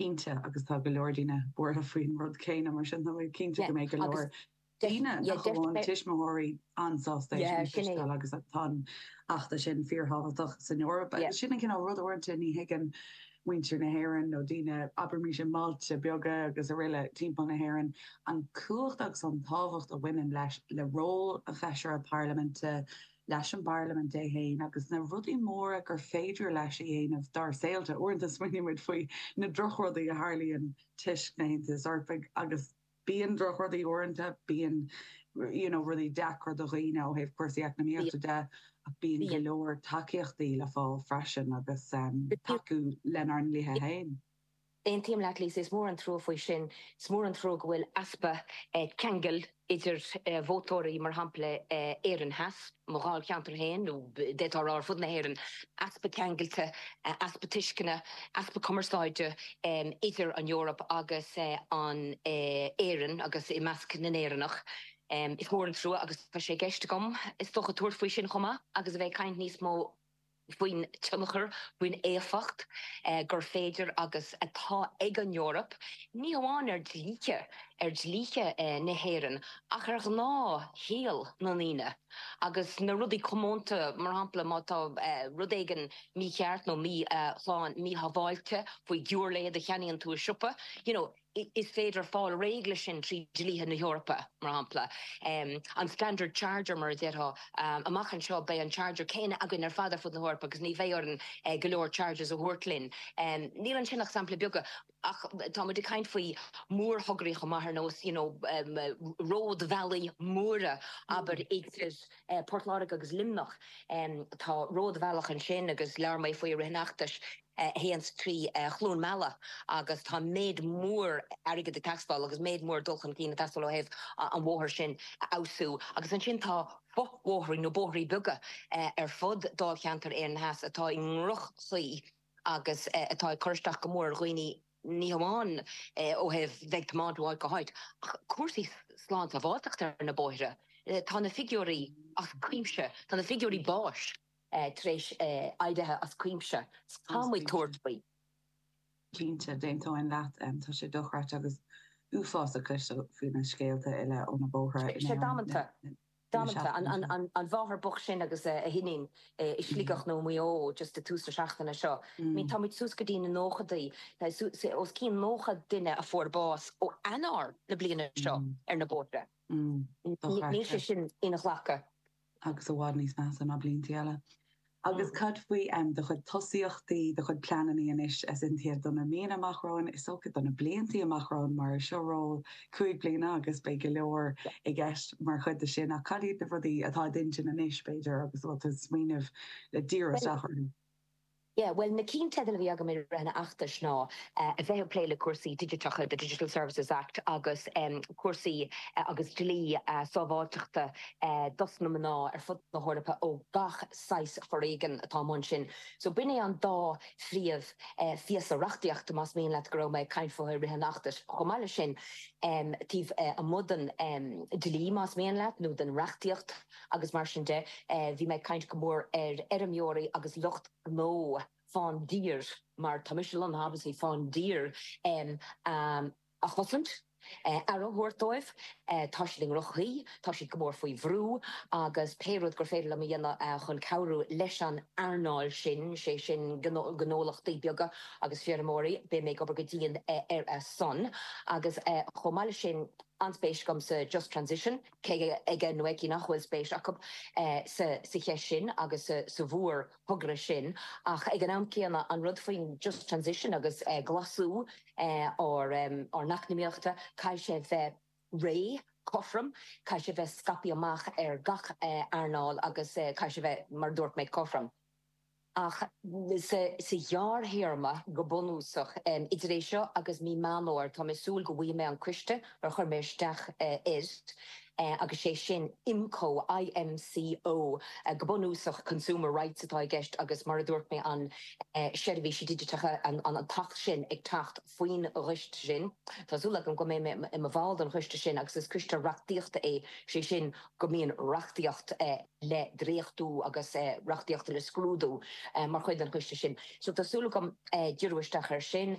cinnte, agus tá go leor daoine buartha faoin rud céanna, mar sin tá mé cinnte go mbeidh go leor daoine, nach amháin tuismitheoirí, an-sásta é sin a chloisteáil agus tá an feachtas sin fíorthábhachtach san Eoraip agus sin an cineál ruda, uaireanta ní thuigeann muintir na hÉireann nó daoine, abraimis i mbailte beaga agus aroile timpeall na hÉireann, an chumhacht agus an tábhacht a bhaineann leis, le ról an Fheisire Parlaiminte. leis an bParlaimint í féin agus na rudaí móra gur féidir leis a dhéanamh dár saolta. Uaireanta smaoiníonn muid faoi na drochrudaí a tharlaíonn toisc an Aontais Eorpaigh agus bíonn drochrudaí uaireanta, bíonn you know rudaí deacra do dhaoine ó thaobh cúrsaí eacnamaíochta de ach bíonn go leor tacaíochtaí le fáil freisin agus tacú lenár ndlíthe féin. Aontaím leat agus, is mór an trua faoi sin. Is mór an trua go bhfuil easpa ceangail idir vótóirí, mar shampla Éireann Theas, mo dháilcheantar féin, nó d'fhéadfá a rá ar fud na hÉireann, easpa ceangailte, easpa tuisceana, easpa cumarsáide idir an Eoraip agus in Éirinn agus i measc na nÉireannach. Is mór an trua agus tá sé i gceist agam is dócha tabhairt faoi sin chomh maith agus a bheith ag caint níos mó. faoin tionchar, faoin éifeacht gur féidir agus atá ag an Eoraip, ní hamháin ar dhlíthe, ar dhlíthe na hÉireann, ach ar ghnáthshaol na ndaoine agus na rudaí comónta, mar shampla, má tá rud éigin mícheart nó míshlán, míshábháilte faoi ghiúirléid a cheannaíonn tú i siopa, you know. Is féidir fáil réidh leis sin trí dhlíthe na hEorpa, mar shampla, an standard charger, mar a déarfá. Amach anseo, beidh an charger céanna againn ar fad ar fud na hEorpa agus ní bheidh orainn go leor chargers a thabhairt linn. Níl ansin ach samplaí beaga, ach tá muid ag caint faoi mhórthograí chomh maith ar nós, you know, ródbhealaí móra, abair, idir Port Láirge agus Luimneach. Tá ródbhealach ansin agus labhair mé faoi i rith an fheachtais. a théann trí Chluain Meala agus tá méid mór airgid ag teastáil agus méid mór dul chun cinn ag teastáil ó thaobh an bhóthair sin a fheabhsú agus ansin tá fo-bhóithre nó bóithre beaga ar fud dáilcheantar Éireann Theas atá i ndroch-chaoi agus atá ag cur isteach go mór ar dhaoine ní hamháin ó thaobh bheith ag tiomáint ó áit go háit ach cúrsaí slánsábháilteachta ar na bóithre. Tá na figiúirí as cuimse, tá na figiúirí báis. tar éis ardaithe as cuimse. Tá muid ag tabhairt faoi. Cinnte, d'aontóinn leat. Tá sé dochreidte agus uafásach cloisteáil faoi na scéalta uile ó na bóithre in Éirinn le seachtainí. Tá sé damanta. An mháthair bhocht sin agus a hiníon i Sligeach nó i Maigh Eo just ag tús na seachtaine seo. Tá muid suas go dtí na nóchadaí. Os cionn nócha duine a fuair bás ó Eanáir na bliana seo ar na bóithre. Níl sé sin inghlactha. agus i bhfad níos measa ná blianta eile. Agus cad faoi do chuid tosaíochtaí, do chuid pleanannaí anois? Is cinnte do na míonna amach romhainn, is dócha do na bliantaí amach romhainn, mar is ról cúig bliana agus beidh go leor i gceist mar chuid de sin. Ach cad iad na rudaí atá i d'intinn anois, b'fhéidir, agus a bhfuil tú ag smaoineamh le díriú isteach orthu? Yeah, bhuel, na cinnteidil a bhí agam i rith an fheachtais ná a bheith ag plé le cúrsaí digiteacha, the Digital Services Act, agus cúrsaí agus dlí sábháilteachta dos na mná ar fud na hEorpa ó gach saghas foréigin atá amuigh ansin. So, b'in é an dá phríomh phíosa reachtaíochta, más mian leat, go raibh mé ag caint faofa i rith an fheachtais. Chomh maith le sin, taobh amuigh den dlí, más mian leat, nó den reachtaíocht, agus mar sin de, bhí mé ag caint go mór ar fheirmeoirí agus lucht gnó faoin dtír mar tá mise lonnaithe obviously faoin dtír a chosaint, aire a thabhairt dóibh, tá siad i ndroch-chaoi, tá siad go mór faoi bhrú agus pé rud gur féidir liom a dhéanamh chun cabhrú leis an earnáil sin, sé sin gnólachtaí beaga agus feirmeoirí, beidh mé ag obair go dian ar a son. Agus chomh maith leis sin, an-spéis agam sa Just Transition. Cé aige nó aici nach bhfuil spéis acu sa cheist sin agus sa mhórthogra sin, ach ag an am céanna, an rud faoin just transition agus glasú ár n-eacnamaíochta, caithfidh sé bheith réidh, cothrom, caithfidh sé bheith scaipthe amach ar gach earnáil agus caithfidh sé bheith, mar a dúirt mé, cothrom. Ach sa ghearrthéarma go bunúsach, idir é seo agus mí Meán Fhómhair, tá mé ag súil go bhfaighidh mé an coiste ar chuir mé isteach air, agus sé sin IMCO, I-M-C-O, go bunúsach Consumer Rights atá i gceist agus, mar a dúirt mé, an seirbhísí digiteacha, an tAcht sin ag teacht faoin gcoiste sin. Tá súil agam go mbeidh mé i mo bhall den choiste sin agus is coiste reachtaíochta é, sé sin go mbíonn reachtaíocht le dréachtú agus reachtaíocht le scrúdú mar chuid den choiste sin. So tá súil agam díriú isteach air sin.